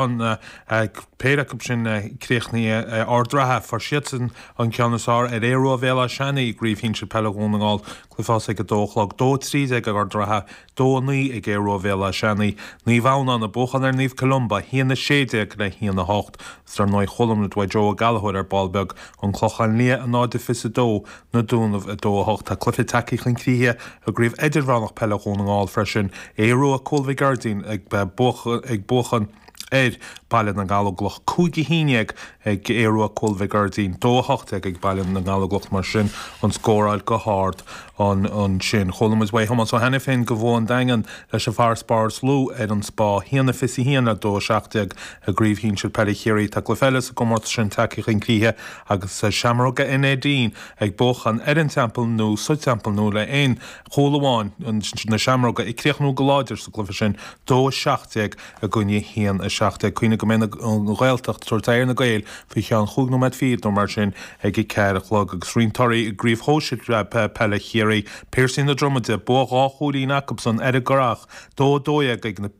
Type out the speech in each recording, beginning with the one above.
an péire acu sin críochnaithe Ard Ratha, fuair siadsan an ceann is fearr ar Aodh Ruadh Bhéal Átha Seanaidh i gCraobh Shinsir Peile Dhún na nGall, cluiche a thosaigh ag 2 a chlog, 2-13 ag Ard Ratha, 2-9 ag Aodh Ruadh Bhéal Átha Seanaidh, Naomh Adhamhnán ag buachan ar Naomh Columba, 1-16 le 1-8, agus dar ndóigh chuala muid uaidh Joe Ó Gallchóir ar ball beag, An Clochán Liath, a náid a fiche is a 2, na Dúnaibh 2, 8 Tá cluiche tagtha chun críche i gCraobh Idirmheánach Peile Dhún na nGall freisin, Aodh Rua, Cúil Mhic Airdín ag buachan ar Baile na nGallóglach 5 11 ag Aodh Rua, Cúil Mhic Airdín 2 18 ag Baile na nGallóglach Mar sin an scóráil go hard ansin. Chuala muid uaidh Thomás Ó hAiniféin gur bhuaigh an Daingean leis an bhfarasbarr is lú ar an Spá 1 21 le 2 17 i gCraobh Shinsir Peile Chiarraí Tá cluiche eile sa gcomórtas sin tagtha chun críche Agus Seamróga an Neidín, ag buachan ar an Teampall Nua sa Teampall Nua le aon chúl amháin, na seamróga ag críochnú go láidir sa gcluiche sin, dó a seacht déag i gcoinne a haon a seacht déag, cuimhnigh go mbeidh an Ghaeltacht ag tabhairt aghaidh ar na Gaeil faoi cheann chúig nóiméad fichead nó mar sin ag a ceathair a chlog agus roinnt torthaí i gCraobh Shóisir Peile Chiarraí, Piarsaigh na Dromaide, bua dhá chúilín acubsan ar an gCurrach, dó a dó dhéag ag na.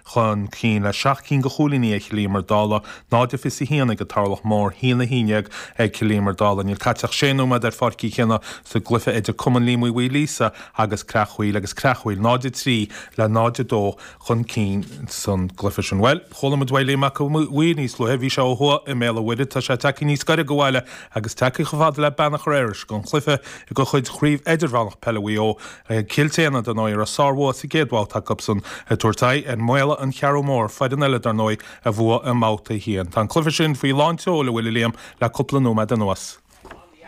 chun cinn le seacht cinn de chúilíní ag Cill Íomair Dálaigh, 0 21 ag an Turlach Mór, 1 11 ag Cill Íomair Dálaigh. Níl caite ach sé nóiméad ar Pháirc Uí Chionnaith sa gcluiche idir Cumann Liam Uí Mhaoilíosa agus Creachmhaoil agus Creachmhaoil 0 3 le 0 2 chun cinn san gcluiche sin. Bhuel, chuala muid uaidh Liam Mac an Mhaoir níos luaithe, bhí sé ó thuaidh i mBéal an Mhuirthead, tá sé tagtha níos gaire do bhaile agus tagtha chomh fada le Beannchar Iorrais don chluiche de chuid Chraobh Idirmheánach Peile Mhaigh Eo. Cill tSéadhna, dar ndóigh, a raibh sárbhua sa gcéad bhabhta acusan ag tabhairt aghaidh ar Mhaolla an Cheathrú Mór, foireann eile, dar ndóigh, a bhuaigh i mBabhta 1. Tá an cluiche sin faoi lán tseoil, an bhfuil, a Liam, le cúpla nóiméad anuas.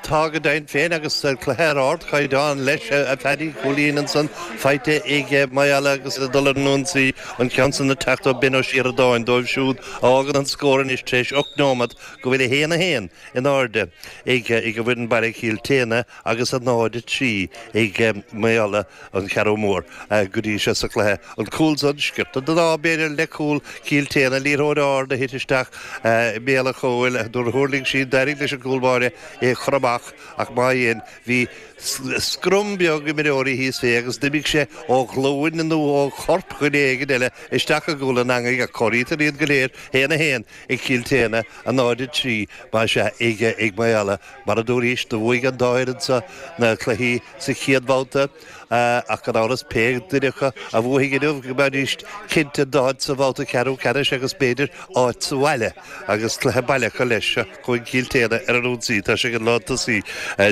Tá go deimhin féin agus cluiche ar ardchaighdeán leis, a Phádraic, cúilín ansan faighte ag Maolla agus ag dul ar an ionsaí, an ceann san ag teacht ó Ben Ó Sioradáin dóibh siúd a fhágann an scór anois tar éis ocht nóiméad go bhfuil 1 1 in airde ag an bhfoireann baile Cill tSéadhna. agus a náid a trí ag Maolla an Cheathrú Mór go dtí seo sa chluiche, an cúl san sciorta den ádh b'fhéidir le cúl Chill tSéadhna, liathróid ard a thit isteach i mbéal an chúil nuair a thuirling sí, d'éirigh leis an gcúl báire é a chur amach ach má dhein, bhí scrum beag imreoirí thíos fé agus d'imigh sé ó ghlúin nó ó chorp dhuine éigin eile isteach i gcúl an eangaigh ach comhairítear iad go léir 1-1 ag Cill tSéadhna, a náid a trí, más ea, ag Maolla Mar a dúras, do bhuaigh an dá fhoireann seo na cluichí sa chéad bhabhta, ach gan amhras, pé duine acu a bhuafaidh inniu, go mbeidís cinnte d'áit sa bhabhta ceathrú ceannais agus b'fhéidir áit sa bhaile agus cluiche baile acu leis. Seo chugainn Cill tSéadhna ar an ionsaí, tá sé ag an lántosaí,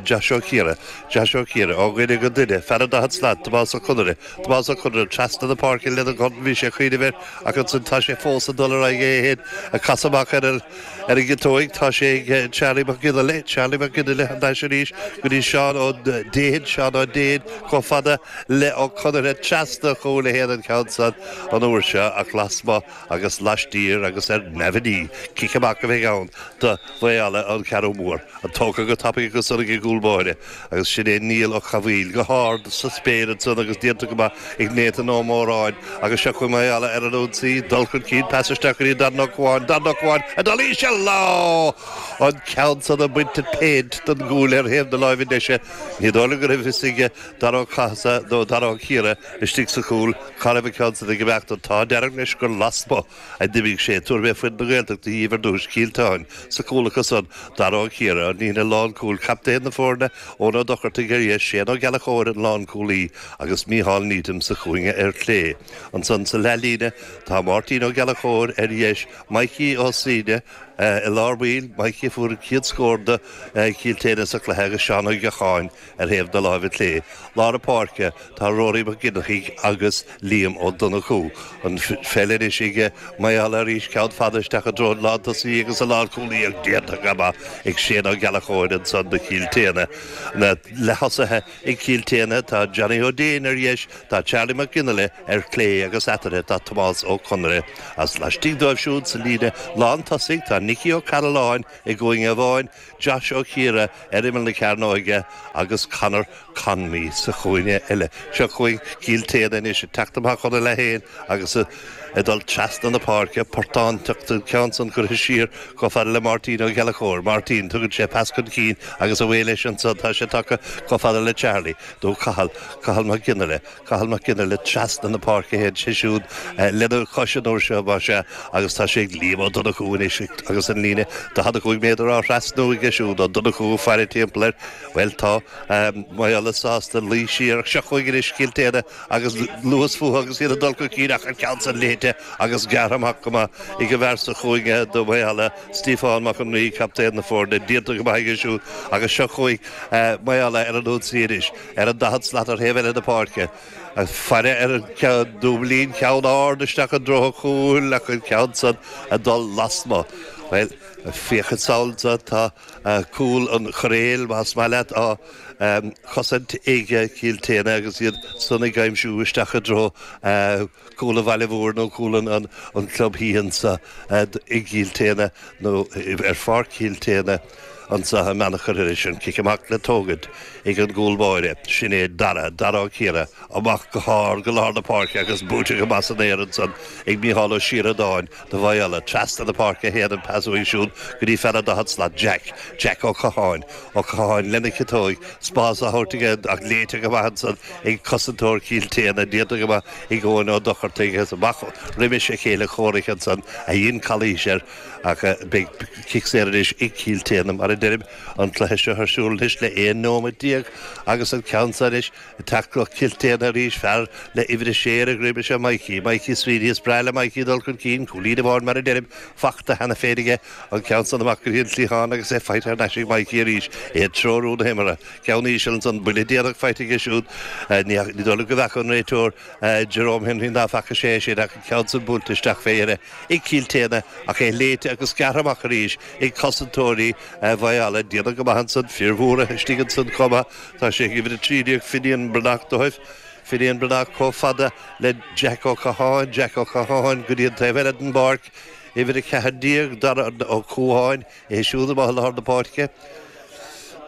Josh Ó Ciardha. Josh Ó Ciardha, ó dhuine go duine, fear an daichead slat, Tomás Ó Conaire. Tomás Ó Conaire, trasna na páirce lena dhorn, bhí sé ag cuimhneamh air, ach ansin tá sé fós ag dul ar aghaidh é fhéin ag casadh amach ar an. Ar an gciotóig, tá sé ag Charlie Mac Fhionnghaile, Charlie Mac Fhionnghaile thar n-ais arís go dtí Seán Ó Déin, Seán Ó Déin, chomh fada le Ó Conaire, trasna an chúil a théann an ceann san an uair seo ach lasmuigh agus laistiar agus ar neamhní, cic amach a bheidh ann do Mhaolla-An Cheathrú Mhór, an tógtha go tapaidh ansan ag an gcúl báire Agus sin é Niall Ó Cathmhaoil, go hard sa spéir ansan agus déanta go maith ag Nathan Ó Móráin. Agus seo chugainn Maolla ar an ionsaí, dul chun cinn, pas isteach go dtí Darren Ó Cubháin, Darren Ó Cubháin ag dul íseal! Á! An ceann san ag baint an phéint den gcúl ar thaobh na láimhe deise. Ní dóigh liom go raibh a fhios ag Dara Ó Cathasaigh nó Dara Ó Ciardha istigh sa chúl cá raibh an ceann san ag imeacht. An t-ádh dearg leis gur lasmuigh a d'imigh sé, tabharfaidh mé foireann na Gaeltachta dhíbh ar dtúis, Cill tSéadhna, sa chúl acu san, Dara Ó Ciardha, an líne lánchúil, captaen na foirne, Eoin Ó Dochartaigh ar dheis, Séan Ó Gallachóir an lánchúlaí agus Micheál Needham sa chúinge ar chlé. Ansan sa leathlíne tá Máirtín Ó Gallachóir ar dheis, Maidhcí Ó Suibhne i lár baill, Maidhcí a fuair an chéad scór do Chill tSéadhna sa chluiche agus Seán Ó Gacháin, Ar thaobh na láimhe clé, lár páirce, tá Ruairí Mac Fhinneachtaigh agus Liam Ó Donnchú. An pheil anois ag Maolla arís, ceann fada isteach i dtreo an lántosaí agus an lánchúlaí ach déanta go maith ag Séan Ó Gallachóir anso do Chill tSéadhna. Na leath-thosaithe ag Cill tSéadhna, tá Johnny Ó Déin ar dheis, tá Charlie Mac Fhionnghaile ar chlé agus eatarthu tá Tomás Ó Conaire. Is laistigh dóibh siúd sa líne lán tosaigh, tá Nicky Ó Cairealláin i gcúinge amháin, Josh Ó Ciardha ar imeall na cearnóige agus Conor Connolly sa chúinne eile. Seo chugainn Cill tSéadhna anois ag teacht amach óna leith féin agus ag dul trasna na páirce, portán tugtha an ceann san curtha siar chomh fada le Máirtín Ó Gallachóir. Máirtín, tugann sé pas chun cinn agus a bhuí leis anso tá sé tagtha chomh fada le Charlie, nó Cathal, Cathal Mac Fhionnghaile. Cathal Mac Fhionnghaile trasna na páirce a théann sé siúd lena chois an uair seo, más ea, agus tá sé ag Liam Ó Donnchú anois agus an líne 45 méadar á thrasnú aige siúd. Ó Donnchú ag faire timpeall air, Bhuel, tá Maolla sásta luí siar ach seo chugainn anois Cill tSéadhna agus luas fúthu agus iad ag dul chun cinn ach an ceann san léite agus gearrtha amach go maith ag an bhfear sa chúinge do Mhaolla, Stiofán Mac an Rí, captaen na foirne, déanta go maith aige siúd agus seo chugainn Maolla ar an ionsaí anois. ar an daichead slat ar thaobh eile na páirce, ag faire ar an dúblín ceann ard isteach i dtreo an chúil ach an ceann san ag dul lasmu'. Bhuel, féach anso anso, tá cúl an choiréil, más maith leat, á chosaint ag Cill tSéadhna agus iad san ag aimsiú isteach i dtreo chúl an bhaile mhóir nó cúl an chlub thíos anso i gCill tSéadhna nó ar pháirc Chill tSéadhna. Annsa a mbeannacht curtha leis sin, cic amach le tógaint ag an gcúl báire, sin é Dara, Darragh Ó Ciardha, amach go hard go lár na páirce agus buaite go maith san aer ansan ag Micheál Ó Síoradáin do Mhaigh Eala. Trasna na páirce a théann an pas uaidh siúd go dtí fear an daichead slat, Jack, Jack Ó Catháin. Ó Catháin lena chiotóig, spás á thabhairt aige ach léite go maith ansan ag cosantóir Chill tSéadhna, déanta go maith ag Eoin Ó Dochartaigh agus amach roimis a chéile comhraic ansan a dhein calaois ar Ach beidh cic saor anois ag Cill tSéadhna, mar a deirim, an cluiche seo ar siúl anois le 11 nóiméad agus an ceann seo anois tógtha ag Cill tSéadhna arís, fear le uimhir a sé ar a dhroim is ea Mikey, Mikey Sweeney. Is breá le Mikey dul chun cinn, cúilín amháin, mar a deirim, fachta cheana féin aige. An ceann san amach go dtí an cliathán agus é faighte thar n-ais ag Mikey arís. É ag treorú na himeartha. Ceann íseal ansan, buille déanach faighte aige siúd. Ní dóigh liom go bhfeaca an réiteoir Jerome Henry ná faca sé é sin ach an ceann san buailte isteach fé dheireadh. ag Cill tSéadhna, ach é léite agus gearrtha amach arís ag cosantóirí Mhaigh Eala, déanta go maith ansan, fir mhóra istigh ansan chomh maith, tá sé ag uimhir 13, Finian Breathnach dóibh, Finian Breathnach chomh fada le Jack Ó Catháin, Jack Ó Catháin go dtí an taobh eile den bpáirc, uimhir 14, Darragh Ó Catháin. É siúd amach i dtreo lár na páirce,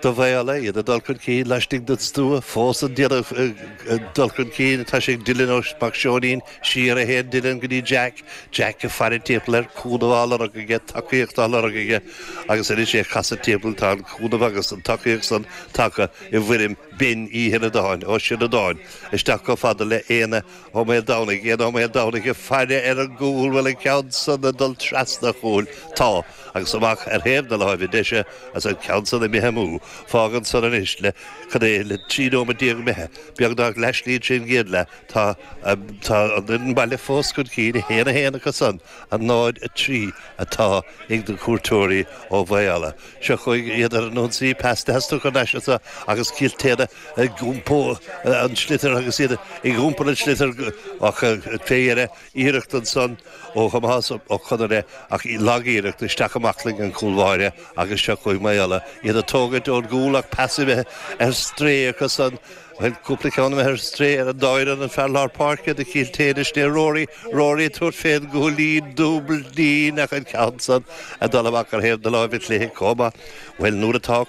do Mhaigh Eala iad ag dul chun cinn laistigh den stua, fós iad ag dul chun cinn tá sé ag Dillon ó Mac Seoinín, siar a théann Dillon go dtí Jack, Jack ag faire timpeall air, cúnamh á lorg aige, tacaíocht á lorg aige agus anois é ag casadh timpeall, tá an cúnamh agus an tacaíocht san tagtha i bhfoirm Ben Ó Síoradáin, Ó Síoradáin, isteach chomh fada le Éanna Ó Maoil Domhnaigh, Éanna Ó Maoil Domhnaigh ag faire ar an gcúl, bhfuil an ceann san ag dul trasna an chúil? Tá, agus amach ar thaobh na láimhe deise, agus an ceann san imithe amú. Fágann san anois le, cad é, le trí nóiméad déag imithe, beagnach leathshlí trín gcéad leath. Tá an, tá an, an baile fós chun cinn, a haon a haon acu san, a náid a trí atá ag na cuairteoirí ó Mhaigh Eala. Seo chugainn iad ar an ionsaí, pas de theastucán aisti agus Cill tSéadhna, ag iompó an tsliotair agus iad ag iompar an tsliotair ach fé dheireadh iarracht ansan ó Thomás Ó Conaire ach lag-iarracht isteach i mbaclainn an chúl báire agus seo chugaibh Maigh Eala, iad ag tógaint ón gcúl ach pas imithe ar strae acu san, bhuel cúpla ceann imithe ar strae ar an dá fhoireann, an fear lár páirce do Chill tSéadhna sin é Rory, Rory ag tabhairt fén gcúilín, dúblín ach an ceann san ag dul amach ar thaobh na láimhe clé comh maith. Bhuel nuair atá,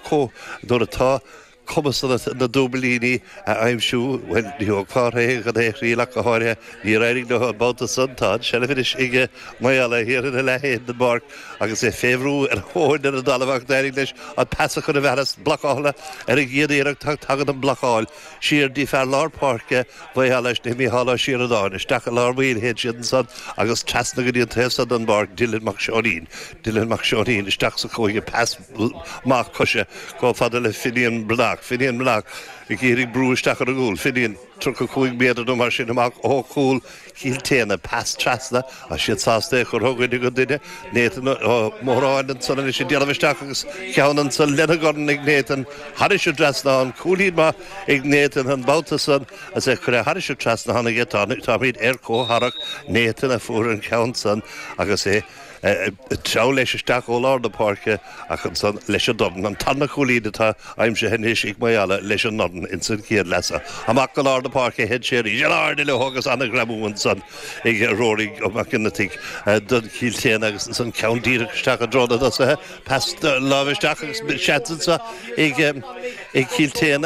nuair atá, cumas na dtuaimilíní a aimsiú, bhuel, ní thógfá orthu é gan é a thriail ach go háirithe, níor éirigh leo an babhta san, tá an seilbh anois ag Maigh Eala thiar ina leath féin den bpáirc agus é fé bhrú ar a thóin ar an dtalamh ach d'éirigh leis an pas a chur i bhfearas blocáladh ar an gcéad iarracht ach tagann an blocáil siar dtí fear lár páirce Mhaigh Eala istigh, Micheál Ó Síoradáin, isteach i lár baill, téann siad ansan agus trasna go dtí an taobh so den bpáirc, Dylan Mac Seáinín, Dylan Mac Seáinín, isteach sa chúinne, pas. mac coise chomh fada le Finian Bhnoc. Finian Bhnoc ag iarraidh brú isteach ar an gcúl. Finian, 35 méadar nó mar sin amach ó chúl Chill tSéadhna, pas trasna, tá siad sásta é a chur ó dhuine go duine. Nathan Ó Móráin ansan agus é ag déanamh isteach agus ceann ansan lena dhorn ag Nathan. Thairis an trasnán. Cúilín maith ag Nathan an babhta san is é curtha thairis an trasnán aige. Táimid ar comhtharrac Nathan a fuair an ceann san agus é Ag treabhadh leis isteach ó lár na páirce ach ansan leis an dorn. An tarna cúilín atá aimsithe anois ag Maigh Eala leis an ndorn ins an chéad leath. Amach go lár na páirce a théann sé arís. In airde leo agus an-ghreamú ansan ag Ruairí Mac Cionnaithigh don Chill tSéadhna agus ansan ceann díreach isteach i dtreo na dtosaithe. Pas láimhe isteach agus seans ansan ag Cill tSéadhna.